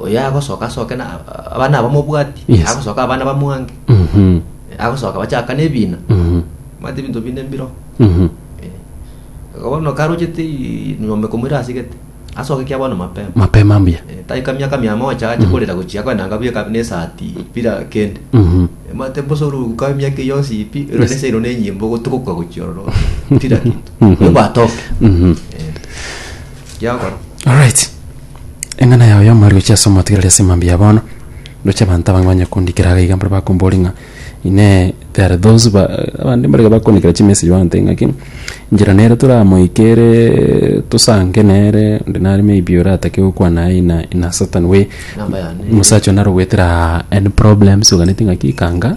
oyagosoka asoke na abana abamobwati Yes. agosoka abana bamwange Mhm. agosoka bachakana ebina Mhm. mate ebinto bine mbiro Mhm. bono karochete i- ng'ombe komoira asigete asoke kia bono mapema mapema mbuya Eh, taika miaka mia mocha ache korera gochia kwenanga buya kabi nesati pira kende Mhm. Eh, mate bosoru ka miaka iyo yonsi ipi ero Yes. nese ero nenyimbo gotugoka gochia ororo pira kintu Mhm. bwatoke Mhm. Giakora. Alright. Eng'ana yao y'omoerio chiase omotigereri ase emambia ya bono. Ndoche abanto abange banye kondikera iga iga mbare bakombori ng'a ine there are those ba abande mbare iga bakondikera chimessage bantebia ng'aki inchera nere toramoike ere tosange nere onde nare maybe oratake gokwana aye in a in a certain way. Namba yane. Omosacha oyo nare ogwetera any problems oganeti ng'aki kanga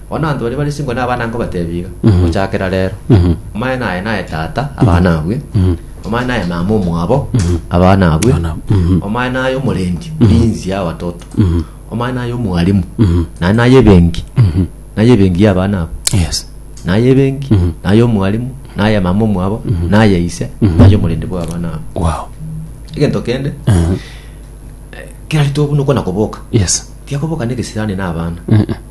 Bono abanto baria bare chinko nabana nkobateebia iga, Gochakera reero, omanye naye naye tata, abana abue, omanye naye mama omwabo, abana abue, omanye naye omorendi, omurinzi y'abatoto, omanye naye omwalimu, naende naye ebenki, naye ebenki y'abana abwo, Yes. naye ebenki, naye omwalimu, naye mama omwabo, naye ise, naye omorendi bw'abana abwo. Wow. Egento kende, kera rituko buna okwana koboka, Yes. tiga koboka negesirani na abana,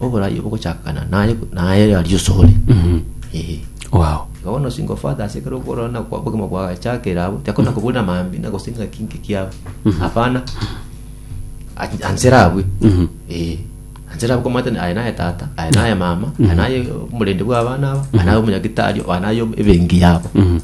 oborai obogochakana naye naye aria osore Eh. Wow. Igo bono singo father ase ekero okorora na kwa obogima bwagachakera abo tiakona koburira maambia na gose ng'a kinki kiabo hapana A- ansere abwe Mhm. Eh, ansere abwe komata aye naye tata aye naye mama aye naye omorende bw'abana aba aye naye omonyagitari aye naye ebenki yabo Mhm.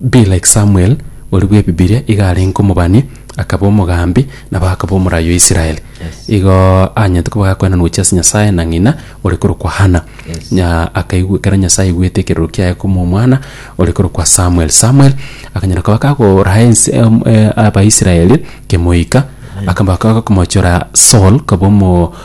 Be like Samuel, oria bw'Ebibiria iga arenge omobani, akaba omogambi, nabo akaba omoraai o Israel. Igo anyete koba gakoenana gochia ase Nyasae na ng'ina ore korokwa Hana. Nya akaigwe ekero Nyasae aigwete ekeroro kiaye koma omwana ore korokwa Samuel. Samuel akanyara koba kagoraa ense em- e Abaisraeli kemoika, akaba kagomochora Saul koba omo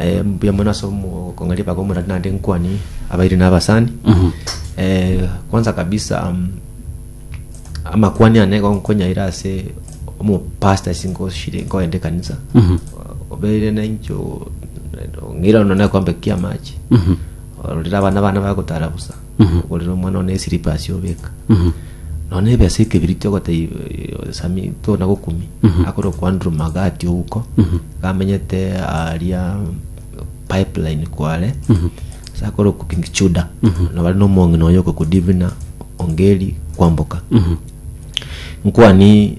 Eh, mbuya mono ase omo- okong'aria baba omorari naende nkwani abairi na abasani Eh, kwanza kabisa um, amakwani ane gonkonyaire ase omopasta ase nkoshire nkoende ekanisa obeire naincho ng'ira ono nekombe kiamache ororire abana bana bagotara busa Ogorera omwana one esiripa asio obeka. Nonya na ebesa ekebiri tiogotebia eh, Sami tona gokumi. Akorwa kwa Andrew Magati ouko. Gamenyete aria pipeline kware. Ase akorwa kwa King Chuda. Na bare nomong'ina oyo okokudivina Ongeri kwamboka. Nkwani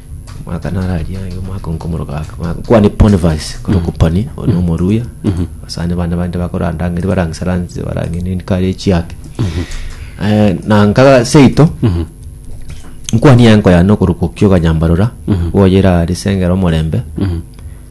omwaka naro aria iga omwaka oo nkomoroka ake omwaka kwane Boniface korokwa Pani oyo na omoruya abasani bande bande bakorandangeri baransaranse barangende nindi kare echiake Eh, na nkaga seito nkwanie enko yane okorokwa okio okanyambarora gwoyera ase engero omorembe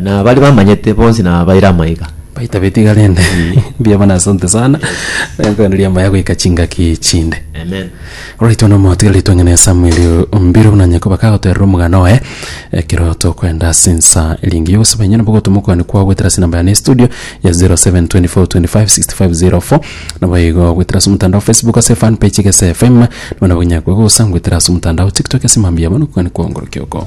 Na baria bamanyete bonsi nabaire amaiga. Baita betiga rende. Mbuya mono asante sana. Nengokwana riamaya agoika chingaki chinde. Amen. Alright bono motigarie twang'ane Samuel Ombiru buna onye koba kagoterera omogano oye ekero tokoenda ase ensa eri engiya ogosaba inye nabo ogotoma okwane kwao goetera ase enamba yane ya estudio ya 0724256504 nabo igo goetera ase omotandao Facebook ase fan page Egesa FM nabo nabo onyakwe gosa goetera ase omotandao TikTok ase mambia bono okwane kwao ngorokia oko.